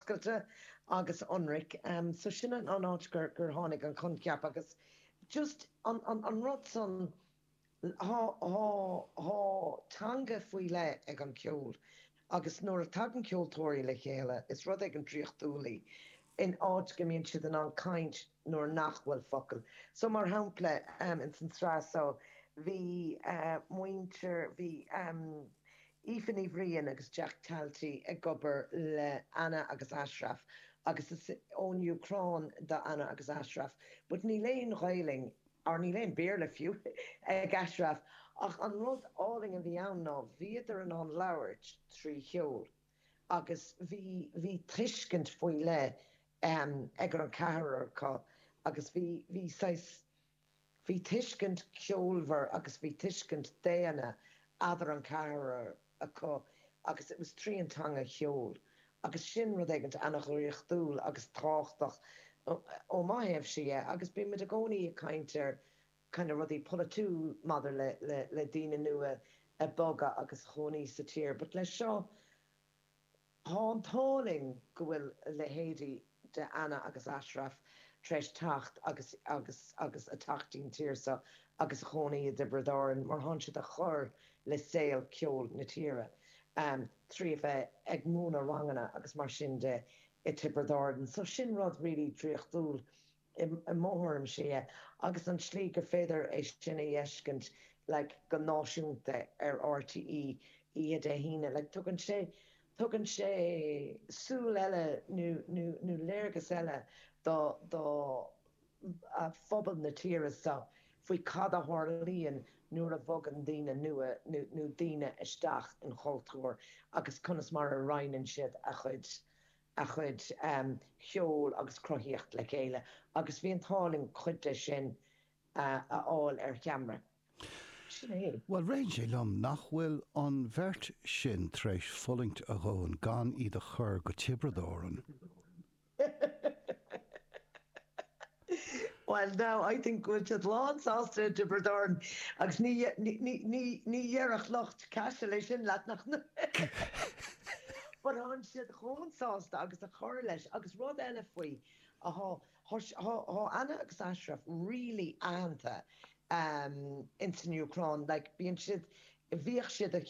oscailte agus ionraic. So sin an an áit gur gur tháinig an coincheap agus just an an an rud san thá thá thá teanga faoi leith ag an ceol agus nuair a tagann ceoltóirí le chéile is rud éigin draíochtúil é in áit go mbíonn siad in ann caint nuair nach bhfuil focail so mar shampla ins an sraith so bhí muintir bhí Aoife Ní Bhriain agus Jack Talty ag obair le Anna agus Ashraf agus is ón Úcráin do Anna agus Ashraf but níl aon Ghaeilge or níl aon Béarla fiú ag Ashraf ach an rud álainn a bhí ann ná bhíodar in ann labhairt trí cheol agus bhí bhí tuiscint faoi leith ag an gceathrar acu agus bhí bhí saghas Bhí tuiscint ceolmhar agus bhí tuiscint daonna idir an ceathrar acu agus it was trí an teanga cheoil agus sin rud éigint ana dhraíochtúil agus tábhachtach ó mo thaobhsa de agus bímid i gcónaí ag caint ar kind of rudaí polaitiúil maidir le daoine nua ag bogadh agus a chónaí sa tír but le seo Thá an t-ádh linn go bhfuil leithéidí de Anna agus Ashraf tar éis teacht agus agus agus a teacht 'ín tír seo agus a chónaí i dTiobraid Árann mar thán siad a chur le saol ceoil na tíre trí a bheith ag múineadh ranganna agus mar sin de i dTiobraid Árann so sin rud really draíochtúil i mo thuairimse é, agus an tslí gur féidir é sin a dh'fheiscint like go náisiúnta ar RTÉ oíche Dé hAoine like tugann sé tugann sé súil eile nó nó nó léargas eile do do phobal na tíre so faoi cad a tharlaíonn nuair a bhogann daoine nua nó nó daoine isteach 'n chultúr agus conas mar a roinneann siad a chuid a chuid cheoil agus cruthaíocht le chéile agus bhí an t-ádh linn cuid de sin a fháil ar cheamra. Sin é. Bhuel, rith sé liom, nach bhfuil an bheirt sin tar éis fulaingt a ndóthain gan iad a chur go Tiobraid Árann. Bhuel now, I think go bhfuil siad lán sásta i dTiobraid Árann agus ní, ní, ní, ní dhéarfadh lucht Caisil é sin leat nach But thánn siad chomh sásta agus a chur leis agus rud eile faoi, thá, thá, thá, thá Anna agus Ashraf really aitheanta ehm ins an Úcráin like bíonn siad, bhíodh siad a'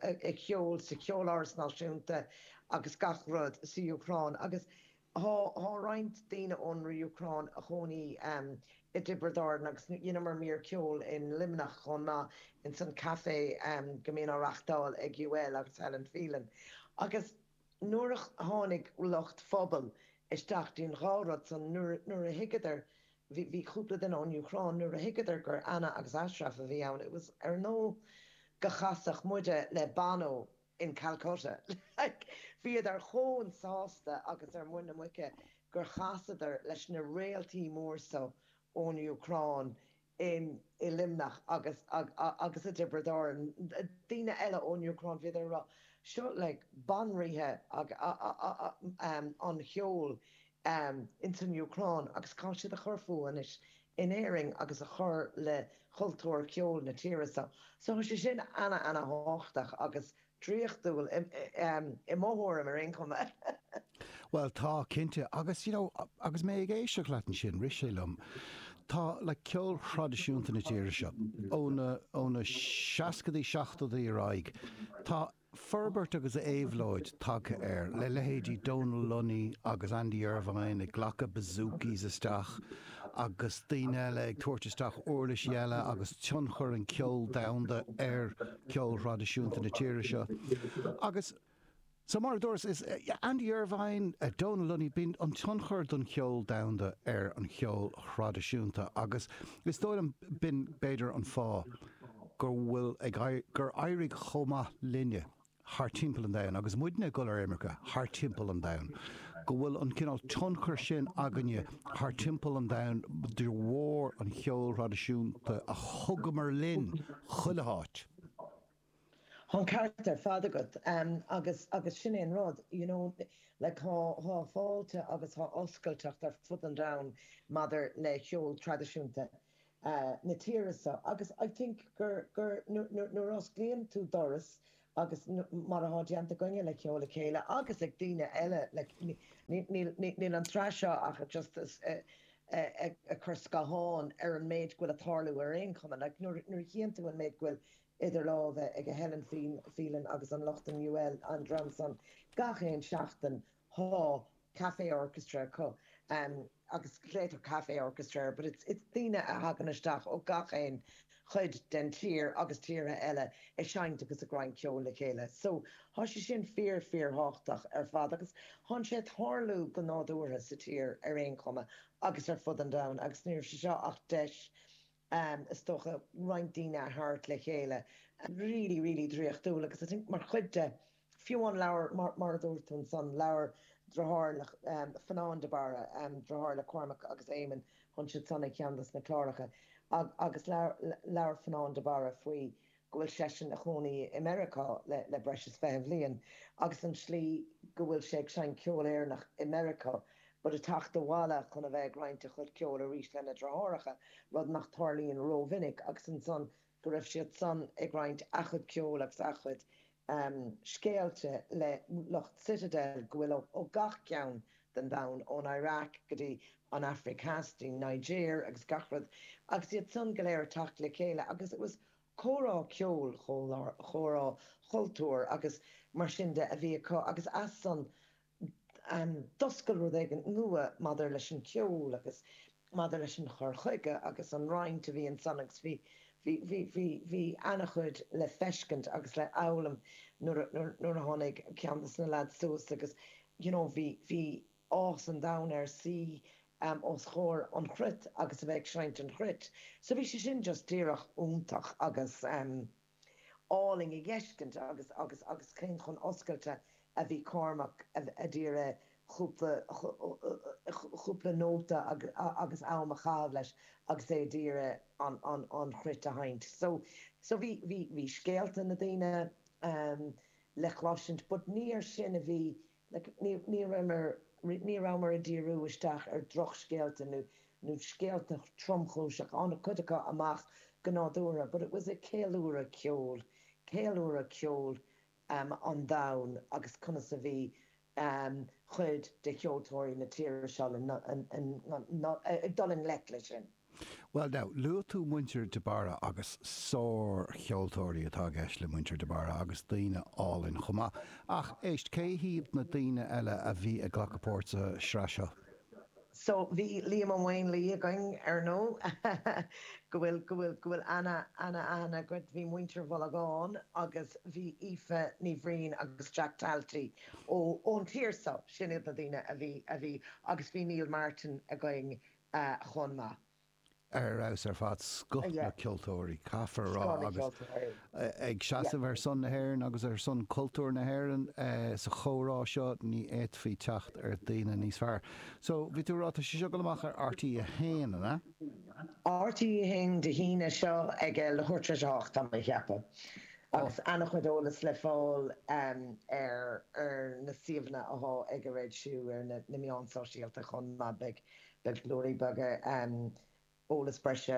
a' a' cheol sa Cheoláras Náisiúnta agus gach rud sa Úcráin agus Thá roinnt daoine ón Úcráin a chónaí i dTiobrad Árann agus dheineamar mír ceoil in Luimneach chomh maith ins an café go mbíonn á reachtáil ag UL agus Helen Phelan agus nuair a tháinig lucht Phobal isteach déan dá rud san nuair a thuigeadar bhí cúpla duine ón Úcráin nuair a thuigeadar gur Anna agus Ashraf a bhí ann it was ar ndóigh go gcasfadh muide le Bono in Calcutta, like, bhíodar chomh sásta agus ar muin na muice gur chasadar leis na réaltaí móra so ón Ucráin in, i Luimneach agus, agus i dTiobraid Árann, daoine eile ón Ucráin, bhíodar a rá, seo, like, banríon an cheoil ehm, ins an Úcráin agus tá siad a chur fúthu anois in Éirinn agus a chur le chultúr cheoil na tíre so. So thá sé sin ana-ana-thábhachtach agus draíochtúil, i, ehm, i mo thuairim ar aon chuma. Bhuel tá, cinnte. Agus, you know, agus mé ag éisteacht leat ansin, rith sé liom, tá, like, ceol thraidisiúnta na tíre seo, ó na, ó na seascadaí, seachtódaí ar aghaidh, tá forbairt agus éabhlóid tagtha air, le leithéidí Donal Lunny agus Andy Irvine ag glacadh bouzoukis isteach agus daoine eile ag tabhairt isteach uirlisí eile agus tionchar an cheoil domhanda ar cheol thraidisiúnta na tíre seo agus so mar a dúras is Andy Irvine, Donal Lunny, bíonn an tionchar don cheol domhanda ar an cheol thraidisiúnta agus is dóigh liom b'in b'fhéidir an fáth. go bhfuil ag éirí, gur éirigh chomh maith linne thar timpeall an domhain agus muid ag dul ar imirce thar timpeall an domhain, go bhfuil an cineál tionchar sin againne thar timpeall an domhain de bharr an cheoil thraidisiúnta a thugamar linn chuile háit. Tá an ceart ar fad agat agus, agus sin é an rud, you know, like tá, tá fáilte agus tá oscailteacht ar fud an domhain maidir le cheol traidisiúnta. na tíre so agus I think gur, gur, nuair, nuair osclaíonn tú doras agus mar athá déanta againne le Ceol le Chéile agus ag daoine eile like ní, níl, níl, níl an tsraith seo ach just ag cur scáthán ar an méid go bhfuil a' tarlú ar aon chuma like nuair, nuair a chíonn tú an méid go bhfuil idir lámha ag Helen Phelan agus an lucht an UL an dream san gach aon seachtain Tá Café Orchestra acu agus glaoitear Café Orchestra air but it's it's daoine a thagann isteach ó gach aon chuid den tír agus tíortha eile a seinnt agus ag roinnt ceoil le chéile so thá sé sin fíor fíor thábhachtach ar fad agus thánn sé a' tarlú go nádúrtha sa tír ar aon chuma agus ar fud an domhain agus ní raibh sé seo ach deis am, is dócha, roinnt daoine a tharraingt le chéile really, really draíochtúil agus I think mar chuid de, fiú an leabhar mar a dúirt tú ansan, labhair driotháir le Fionnán de Barra, driotháir le Cormac agus Éamonn, tánn siad san ar cheann dos na cláracha agus labhair Fionnán de Barra faoi go bhfuil seisean ina chónaí i Meiriceá le breis is fiche bliain agus an tslí go bhfuil sé ag seinnt ceol Éireannach i Meiriceá but a theacht abhaile chun a bheith ag roinnt a chuid ceoil arís lena dhriotháracha, rud nach dtarlaíonn ró-mhinic, agus ansan go raibh siad san ag roinnt a gcuid ceoil agus a gcuid. um scéalta le lucht Citadel go bhfuil ó gach ceann den domhan, ón Iraq go dtí an Aifric Theas, go dtí Niger agus gach rud agus iad san go léir a teacht le chéile agus it was a comhrá ceoil, comhrá cultúir agus mar sin de a bhí acu agus as san d'oscail rud éigin nua maidir leis an gceol agus maidir leis an gcur chuige agus an roinnt a bhí ansan agus bhí, bhí, bhí, bhí, bhí ana-chuid le feiscint agus le foghlaim nuair a, nuair, nuair a tháinig ceann dos na lads suas agus you know bhí, bhí áthas an domhain air suí os comhair an chruit agus a bheith ag seinnt an chruit so bhí sé sin just díreach iontach agus. álainn a dh'fheiscint agus, agus, agus cé chomh hoscailte a bhí Cormac a d'iarraidh cúpla, cúpla nóta agus am a chaitheamh leis agus é a d'iarraidh an, an, an chruit a sheinnt. So, so bhí, bhí, bhí scéalta na daoine le cloisint but ní ar sin a bhí, Like, ní rabhamar ag díriú isteach ar drochscéalta nó, nó scéalta tromchúiseacha, tháinig cuid acu amach go nádúrtha but it was a ceiliúradh ceoil, ceiliúradh ceoil ehm an domhain agus conas a bhí ehm cuid de cheoltóirí na tíre seo le, ag dul i ngleic leis sin. Bhuel now, luaigh tú muintir De Barra agus sár-cheoltóirí atá i gceist le muintir De Barra agus daoine álainn chomh maith. Ach, éist, cé hiad na daoine eile a bhí ag glacadh páirt sa sraith seo? So, bhí Liam Ó Maonlaí againn ar ndóigh, go bhfuil, go bhfuil, go bhfuil ana, ana, aithne agat, bhí muintir Mhaolagáin agus bhí Aoife Ní Bhriain agus Jack Talty ó, ón tír so, sin iad na daoine a bhí, a bhí, agus bhí Neil Martin againn, chomh maith. ar fheabhas ar fad scoth na gceoltóirí caithfear a rá agus ag seasamh ar son na hÉireann agus ar son cultúr na hÉireann sa chomhrá seo ní fhéadfaí teacht ar dhaoine níos fearr. So bhí tú a rá tá sé seo dul amach ar RTÉ 1 an ea? RTÉ 1 Dé hAoine seo ag a leathuair tar éis a hocht tá mé a cheapadh agus ana chuid eolas le fáil ar na suíomhanna athá ag an raidió ar na meáin sóisialta chomh maith beidh Beidh blúirí beaga, eolas breise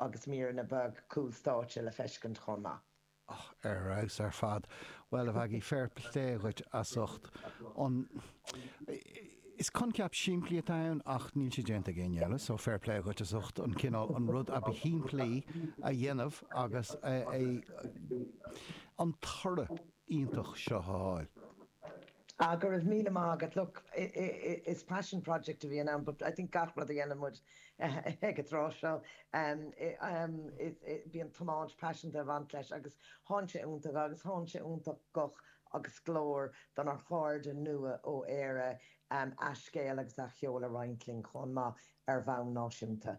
agus míreanna beaga cúl stáitse le feiscint chomh maith. Ar fheabhas ar fad. Bhuel, a Mheaigí, fair plé dhuit as ucht an Is coincheap simplí atá ann ach níl sé déanta ag éinne eile so fair plé dhuit as ucht an cineál an rud ab shimplí a dhéanamh agus an toradh iontach seo a fháil. Ah, go raibh míle maith agat. Look, is passion project a bhíonn ann but I think gach rud a dhéanann muid ag an tráth seo, bíonn tiomáint paiseanta ag baint leis agus thánn sé iontach agus thánn sé iontach guth agus glór donár chairde nua-Éireann a scéal agus a gceol a roinnt linn chomh maith ar bhonn náisiúnta.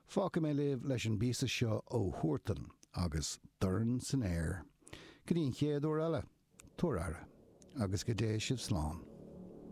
Fágfaidh mé sibh leis an bpíosa seo ó Huartan agus Dorn san Aer. Go dtí an chéad uair eile, tabhair aire agus go dté sibh slán.